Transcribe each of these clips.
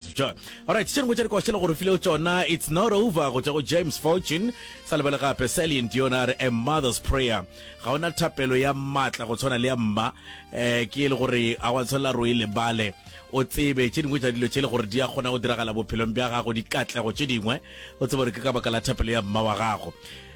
John. Alright, tše dingwe tša dikošele gore filego tšona It's Not Over go tša go James Fortune, sa lebele gape Celine Dion a re A Mother's Prayer. Ga ona thapelo ya matla go tshwana le ya mma eh, ke e le gore a wa tshwanela ro e lebale o tsebe tše dingwe tša dilo tše e le gore di a kgona go diragala bophelong bja gago, dikatlego tše dingwe o tsebe gore ke ka baka la thapelo ya mma wa gago.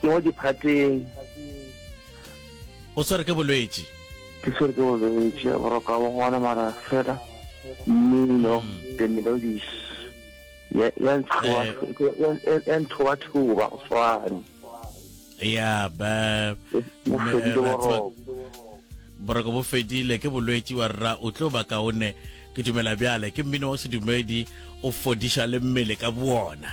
Ke mo diphateng. O swere ke bolwetši. Ke swere ke bolwetši boroka bo ngwana mara fela mmino mm. the melodies ya ya nthoba eh. ya nthoba thoba go swana ya ba boroko bo fedile ke bolwetši wa rra o tlo ba kaone ke dumela bjale ke mmino wa sedumedi o fodiša le mmele ka boona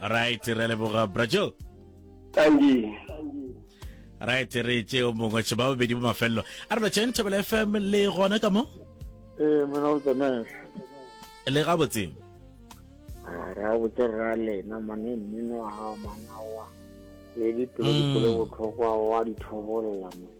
right re leboga brajo tangi right re tše o mongwe tše ba bobedi bo mafelelo a re ba tšheng thebela fm le gona ka mo ee eh, mona o tsamaya le ga botseng ah, ra botse ra lena mane mmino wa gago manawa le dipelo dikolo mm. botlhokwa wa dithobolela mone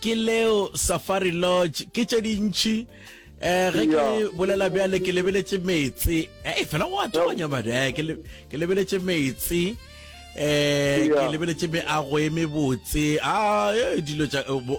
ke leo safari lodge ke tše dintšhi um ge ke bolela bjale ke lebeletše metsi e fela go atoganya madi eh, ke lebeletše metsi um ke lebeletše meago e mebotse a ah, eh, dilo tša eh,